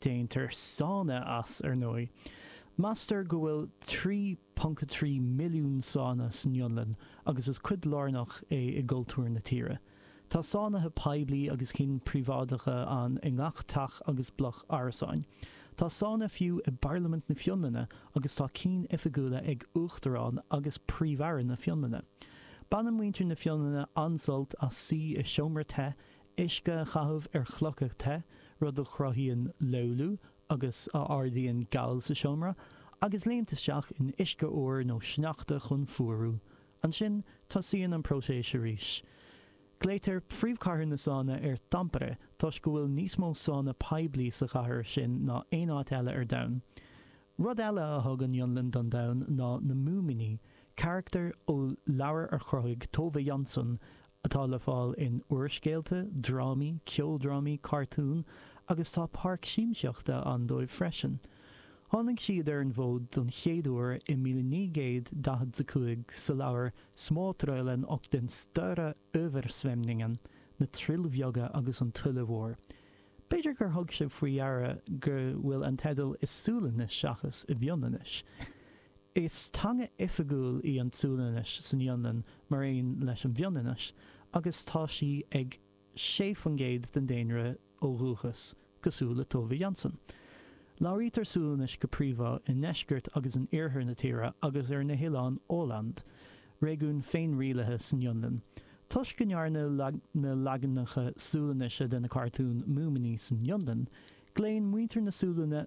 Déantar sána as, ar ndóigh. Meastar go bhfuil 3.3 milliún sána san Fhionlainn agus is cuid lárnach é i gcultúr na tíre. Tá sánaithe poiblí agus cinn príobháideacha ann i ngach teach agus bloc árasáin. Tá sána fiú i bParlaimint na Fionlainne agus tá cinn oifigiúla ag Uachtarán agus Príomh-Aire na Fionlainne. Baineann muintir na Fionlainne an-sult as suí i seomra te Uisce a chaitheamh ar chlocha te, rud a chruthaíonn löyly agus a ardaíonn gal sa seomra, agus léim isteach in uisce fhuar nó sneachta chun fuarú. Ansin, tosaíonn an próiseas arís. Glaoitear príomhchathair na sána ar Tampere toisc go bhfuil níos mó sána poiblí sa chathair sin ná aon áit eile ar domhan. Rud eile a thug an Fhionlainn don domhan ná na Múimíní, carachtair ó leabhar a chruthaigh Tove Jansson atá le fáil in úrscéalta, drámaí, ceoldrámaí, cartúin agus tá páirc siamsaíochta ann dóibh freisin. Tháinig siad ar an bhfód don chéad uair i míle naoi gcéad daichead 's a cúig sa leabhar Småtrollen och den stora översvämningen, Na Troill Bheaga agus an Tuile Mhór. B'fhéidir gur thug sibh faoi deara go bhfuil an teideal i Sualainnis seachas i bhFionlainnis. Is teanga oifigiúil í an tSualainnis san Fhionlainn mar aon leis an bhFionlainnis agus tá sí ag 6% den daonra ó dhúchas, cosúil le Tove Jansson. Labhraítear Sualainnis go príomhá i ndeisceart agus in iarthar na tíre agus ar na hoileáin Åland, réigiún féinrialaithe san Fhionlainn. Toisc go ndearnadh na leaganacha Sualainnise de na cartúin Múimíní san Fhionlainn, glaonn muintir na Sualainne